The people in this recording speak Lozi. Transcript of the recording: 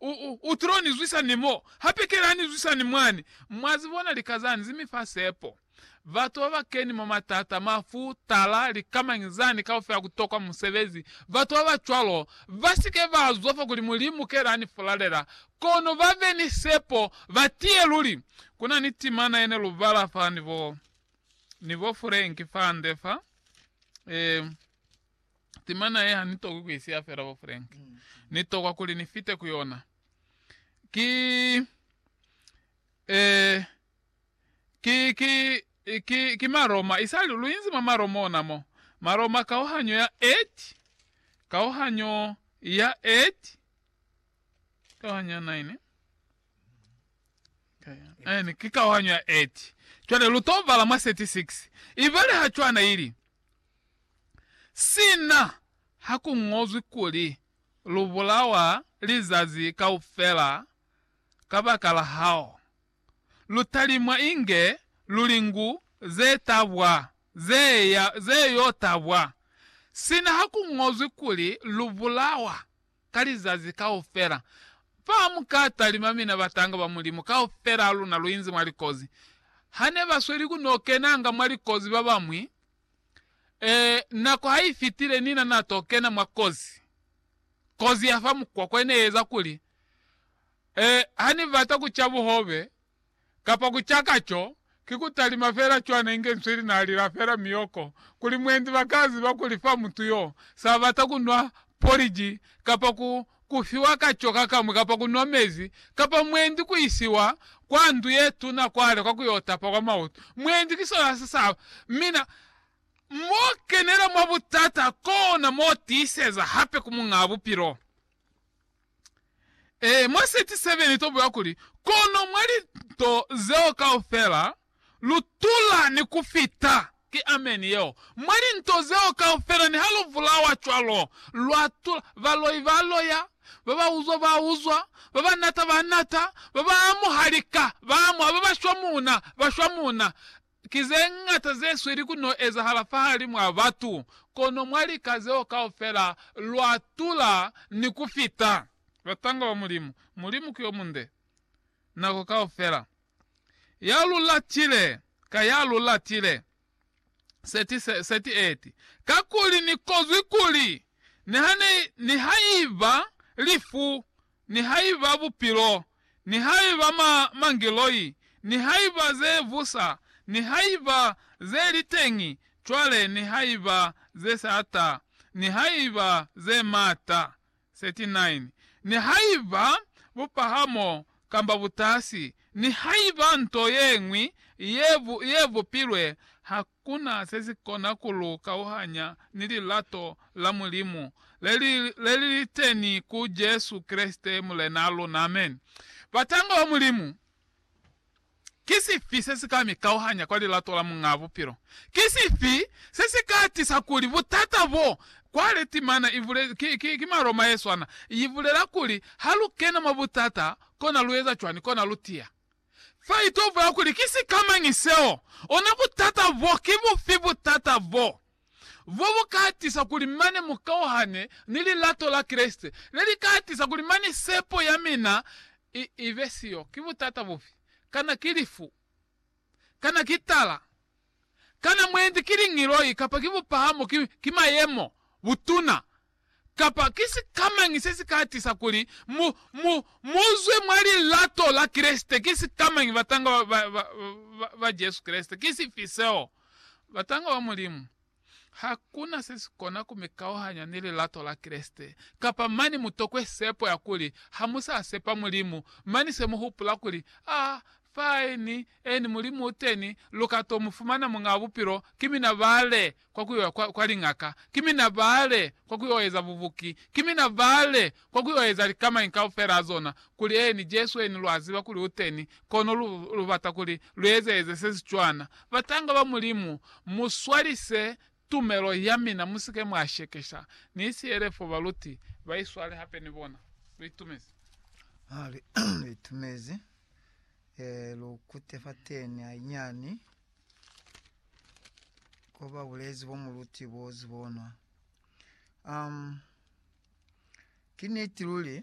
U, u, u tilo ni zwisa ni mo. Hape kela ni zwisa ni mwani. Mwa zi bona lika zani zi mi fa sepo. Batu ba ba keni mwa matata, mafu, tala, lika mañi zani kaufela ku tokwa musebezi, batu ba ba cwalo, ba si ke ba zwa fa kuli Mulimu kela ani fulalela, kono ba be ni sepo, ba tiye luli. Ku na ni timana ye ne lu bala fa ni bo, ni bo Frank fande fa. E. Timana ye ha ni tokwi ku isiya fela bo Frank. Ni tokwa kuli ni fite ku yona. Ki, eh, ki, ki, ki, ki Maroma. Isali lu inzi mwa Maroma ona mo. Maroma kauhanyo ya et, kauhanyo ya et, kauhanyo ya nine. Ene, ki kauhanyo ya et. Cwale lu to bala mwa 36. Ibale ha cwana ili. Sina ha ku ñozwi kuli, Lu bulawa lizazi kaufela kabakala hao, lu talimwa inge lulingu ze tabwa, ze ya, ze yo tabwa, sina ha ku ñozwi kuli, Lu bulawa ka lizazi kaufela. Fa ha mu ka talima mina batanga ba Mulimu, kaufela ha luna lu inzi mwa likozi. Ha ne ba sweli ku n'o kenanga mwa likozi ba bañwi, ee, nako ha i fitile Nina n'a t'o kena mwa kozi. Kozi ya fa mukwakwa i ne i eza kuli, ee, ha ni bata ku ca buhobe, Kapa ku caka co, ki ku talima fela cwana inge nswi li n'a lila fela miyoko, kuli mwendi ba ka ziba kuli fa mutu y'o s'a bata ku nwa poliji, kapa ku, ku fiwa ka co ka kamwi kapa ku nwa mezi, kapa mwendi ku isiwa kwa ndu ye tuna kwale kwa ku y'o tapa kwa mautu. Mwendi ki sona se s'a ba. Mina, m'o kenela mwa butata, kona m'o tiiseza hape ku Muñaa Bupilo. Ee, mwa 37 ni tobulela kuli, Kono mwa linto zeo kaufela, lu tula ni ku fita. Ki ameni yeo. Mwa linto zeo kaufela, niha lu bulawa cwalo, lwa tula. Baloi ba loya, ba ba uzwa ba uzwa, ba ba nata ba nata, ba ba amuha lika ba amuha, ba ba shwa muuna ba shwa muuna, Ki ze ñata ze sweli ku no ezahala fahalimu a batu, kono mwa lika zeo kaufela, lwa tula ni ku fita. Batanga ba Mulimu. Mulimu ki yo munde, nako kaufela. Ya lu latile, ka ya lu latile. 38 kakuli ni kozwi kuli, nihaiba lifu nihaiba bupilo, nihaiba ma, mangiloi, nihaiba ze busa, nihaiba ze li teñi cwale, nihaiba ze sa ta, nihaiba ze mata. 39 nihaiba bupahamo kamba butasi, nihaiba nto yeñwi ye bu, ye bupilwe ha, Ku na se si kona ku lu kauhanya ni lilato la Mulimu le li le li li teni ku Jesu Kreste Mulenaa luna. Amen. Batanga ba Mulimu, ki sifi se si ka mi kauhanya kwa lilato la Muñaa Bupilo? Ki sifi se si ka tisa kuli butata bo kwale timana? Ibule, ki, ki, ki maloma ye swana. I bulela kuli ha lu kena mwa butata, kona lu eza cwani? Kona lu tiya. Fa ito bula kuli ki sikamañi seo, ona butata bo. Ki bufi butata bo? Bo bu ka tisa kuli mane mu kauhane ni lilato la Kreste, le li ka tisa kuli mane sepo ya mina i, i be siyo. Ki butata bufi? Kana ki lifu? Kana ki tala? Kana mwendi ki lingiloi, kapa ki bupahamo, ki, ki mayemo, butuna, kapa ki sikamañi se si ka tisa kuli mu, mu, mu zwe mwa lilato la Kreste? Ki sikamañi, batanga ba, ba, ba, ba, ba Jesu Kreste? Ki sifi seo? Batanga ba Mulimu. Hakuna se si kona ku mi kauhanya ni lilato la Kreste. Kapa mane mu tokwe sepo ya kuli ha mu sa sepa Mulimu, mane se mu hupula kuli, Ah, fine, Eeni, Mulimu uteni, luka to mufumana Muñaa wa Bupilo, ki mina bale kwa kuyo kwa, kwa liñaka, ki mina bale kwa kuyo eza bubuki, ki mina bale kwa kuyo eza likamañi kaufela azona, kuli, eeni, Jesu, eeni, lwa ziba kuli uteni, kono lu, lubata kuli luezeeze sesicwana. Batanga ba Mulimu, muswalise Tumelo ya mina, musike mwa shekesha. Ni siele fo baluti ba iswale hape ni bona. Lu itumezi? Ha, lu itumezi. Ee, lu kute fateni hanyiani ko ba bulezi bo mu luti bo zibonwa. Um, ki niti luli.